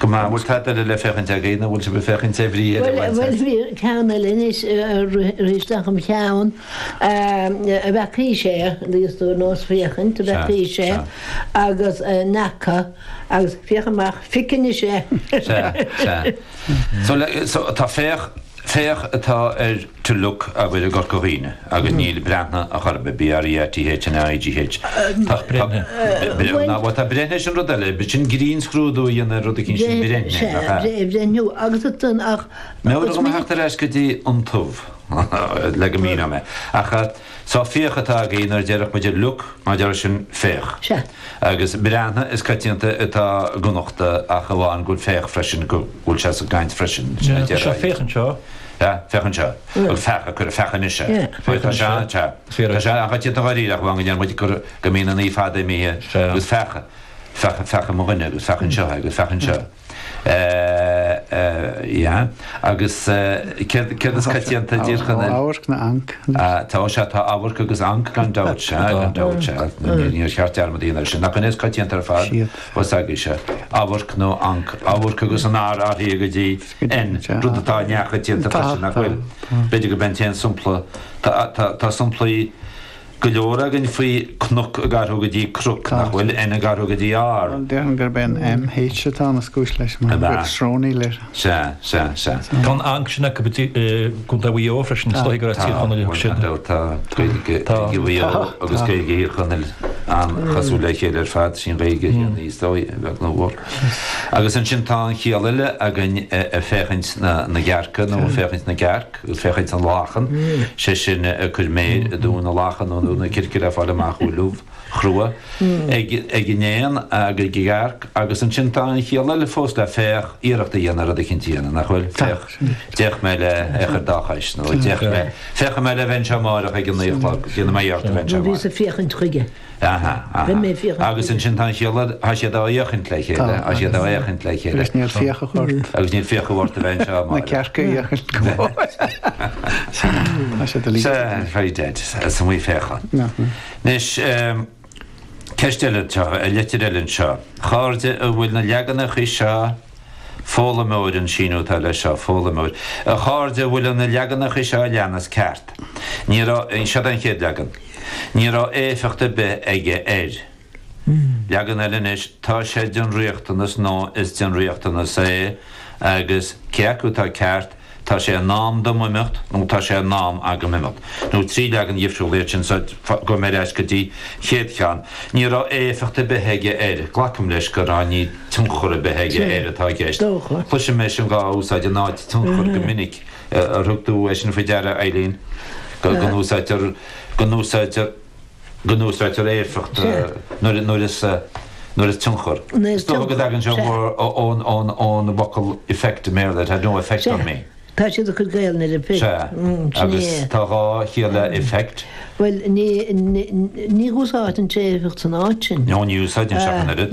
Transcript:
Go maith. An bhfuil tada eile le féachaint againn, nó an bhfuil sibh le féachaint ar bhrí eile a bhaint as? Bhuel, bhí ceann eile anois rith isteach im cheann, a bhfeaca sé, níos lú ná is féachaint a bhfeaca sé, agus ní fhaca agus féach amach, feiceann, is ea. Sea, sea. So, tá, féach. Féach atá ar to look agaibh i gCorca Dhuibhne agus níl Breathnaigh a chor ar bith, BREATHNA IGH. Tá Breithnigh. Breithnigh. Bhuel tá Breithnigh, sin rud eile, sin grinnscrúdú a dhéanamh ar rud éigin, sin Breithnigh, nach ea? Sea, Breithniú agus ansan ach. Mar a raibh mé ag teacht ar ais go dtí an tús le go míneodh mé ach. Sea féach atá againn nuair a déarfadh muid look mar a déarfadh, sin féach. Sea. Agus breathnaigh is coitianta atá i gConnachtaí ach amháin go bhfuil féach freisin, go bhfuil sé sa gcaint freisin, sin a déarfá. Sea, féach anseo. Sea, féach anseo. Agus feach a cuireadh, feach anois é. Sea, féach anois é. Sea, sea. Tá sé an-choitianta dháiríre ach amháin go ndeir muid gur, go mbíonn an 'í' fada imithe agus feach, feach, feach i mo dhuine agus feach anseo é agus feach anseo. Agus céard is coitianta i dTír Chonaill. Amharc nó anc. Tá sé, tá amharc agus anc gan dabht, sea, gan dabht, sea. Níor cheart dearmad a dhéanamh air sin. Nach ab é is coitianta ar fad? Bhuel, s'agaibh, sea. Amharc nó anc. Amharc agus an R ag athrú go dtí N, rud atá neamhchoitianta freisin, nach bhfuil? B'fhéidir gurb é an t-aon sampla, tá samplaí. go leor againn faoi cnoc ag athrú go dtí croc, nach bhfuil? N ag athrú go dtí R. Bhuel, déarfainn gurb é an M, H atá ina chúis leis mar go bhfuil srónaíl air. Sea, sea, sea. Tá an anc sin acu i gContae Mhaigh Eo freisin, is dóigh gur as Tír Chonaill acu siad. Tá, tá, tá Gaeilge Gaeilge Mhaigh Eo agus Gaeilge Thír Chonaill an-chosúil le chéile ar fad, sin Gaeilge Chiarraí is dóigh, a bheag nó a mhór. Agus ansin tá an chiall eile againn ar féachaint na gcearca nó ar féachaint na gcearc. Féachaint na lachan, sé sin, cur méir i dtóin na lachan nó i dtóin na circe le fáil amach an bhfuil ubh chrua ag an éan agus ag an gcearc agus ansin tá an chiall eile fós le féach, iarracht a dhéanamh rud eicínt a dhéanamh, nach bhfuil? Féach, d'fhéach mé le cor dá chois nó d'fhéach mé, féachfaidh mé le bheith anseo amárach ag a naoi a chlog, déanfaidh mé iarracht a bheith anseo amárach. Aha, aha. Agus ansin tá an chiall eile, tá siad á fhéachaint le chéile, tá siad á fhéachaint le chéile. Agus níl fiachaibh ort. Agus níl fiachaibh ort a bheith anseo, Máire. Na cearca a fhéachaint go bhfáil. Tá siad a líon. Sa, very dead, sa mhí féachan. Anois, ceist eile, litir eile anseo. A chairde an bhfuil na leaganachaí seo, Foghlaimeoir, An síniú atá leis seo, Foghlaimeoir, A chairde, an bhfuil na leaganachaí seo a leanas ceart? Ní raibh, seo é an chéad leagan, Ní raibh éifeacht ar bith aige air. Leagan eile anois, Tá sé den riachtanas nó Is den riachtanas é agus Cé acu atá ceart? Tá sé in am dom imeacht nó tá sé in am agam imeacht. Nó trí leagan dhifriúla iad sin so gabhfaidh mé ar ais go dtí an chéad cheann. Ní raibh éifeacht ar bith aige air. Glacaim leis gur "ní raibh tionchar ar bith aige air" atá i gceist. Cloisim é sin dhá úsáid in áit tionchar go minic. Ar thug tú é sin faoi deara, a Eileen, go n-úsá, go n-úsáidtear. go n-úsáidtear éifeacht nuair is tionchar. Is dócha go dtagann sé ón bhfocal effect i mBéarla, it had no effect on me. Tá siad ag cur Gaelainn ar effect. Sea, agus tá dhá chiall le effect. Bhuel, ní úsáideann sé éifeacht san áit sin. No, ní úsáideann sé ach an oiread.